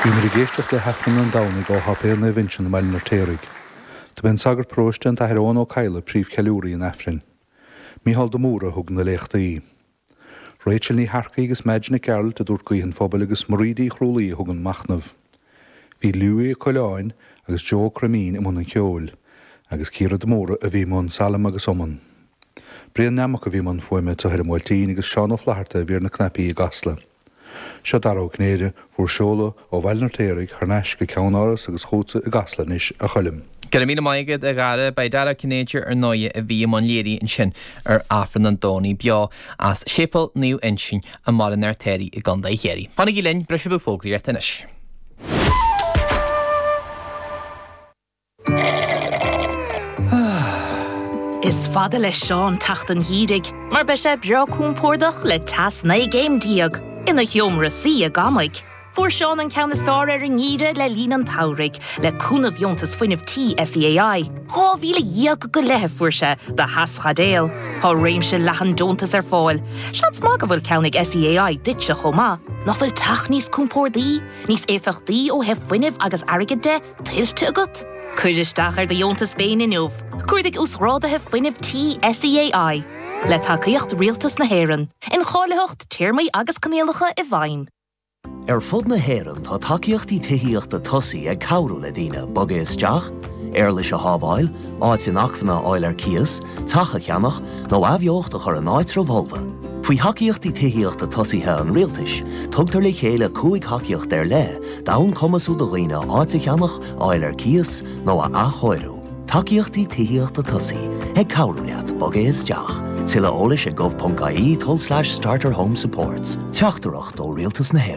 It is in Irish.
Bhíomar ag éisteacht le hAifreann an Domhnaigh ó Shéipéal Naomh Uinseann i mBaile an Fheirtéaraigh. Do b'é an sagart paróiste an tAthair Eoghan Ó Cadhla príomhcheiliúraí an Aifrinn. Mícheál de Mórdha a thug na léachtaí. Rachel Ní hEarcaigh agus Madge Nic Gearailt a dúirt Guí an Phobail agus Marie Uí Chrualaoí a thug an machnamh. Bhí Louis Ó Coileáin agus Joe Ó Croimín i mbun an cheoil, agus Ciara de Mórdha a bhí i mbun Salm agus Iomann. Brian Nammock a bhí i mbun fuaime do Thuirim Bhuailtín agus Seán Ó Flaithearta a bhí ar na cnaipí i gCasla. Seo Dara Ó Cinnéide, bhur seoladh ó Bhaile an Fheirtéaraigh thar n-ais go Ceannáras agus chugatsa i gCasla anois, a Choilm. Go raibh míle maith agat, a Dhara. Ba é Dara Ó Cinnéide, ar ndóigh, a bhí i mbun léirithe ansin ar Aifreann an Domhnaigh beo as Séipéal Naomh Uinseann i mBaile an Fheirtéaraigh i gContae Chiarraí. Fanaigí linn, briseadh fógraíochta anois. Is fada le Seán teacht an gheimhridh mar beidh sé breá compordach le teas 19 gcéim ina sheomra suí i gCamaigh. Fuair Seán an ceann is fearr ar an ngeimhreadh le linn an tsamhraidh, le cúnamh dheontas fuinnimh tí SEAI. Dhá mhíle déag go leith a fuair sé do theaschaidéal. Tá réimse leathan deontas ar fáil. Seans maith go bhfuil ceann ag SEAI duitse chomh maith. Nach bhfuil teach níos compordaí, níos éifeachtaí ó thaobh fuinnimh agus airgid de? tuillte agat? Cuir isteach ar do dheontas féin inniu, Cuardaigh Uasghrádaithe Fuinnimh Tí SEAI, le tacaíocht Rialtas na hÉireann. Incháilitheacht, Téarmaí agus Coinníollacha i bhfeidhm. Ar fud na hÉireann tá tacaíochtaí tithíochta tosaigh ag cabhrú le daoine bogadh isteach, éarlais a shábháil, áit inacmhainne a fháil ar cíos, teach a cheannach, nó athbheocht a chur in áitribh fholmha. Faoi Thacaíochtaí Tithíochta Tosaigh an Rialtais, tugtar le chéile cúig thacaíocht ar leith D'fhonn cumasú do dhaoine áit a cheannach, a fháil ar cíos nó a athchóiriú. Tacaíochtaí tithíochta tosaigh, ag cabhrú leat bogadh isteach. Tuilleadh eolais ag gov.ie tulslais starterhomesupports. Teachtaireacht ó Rialtas na.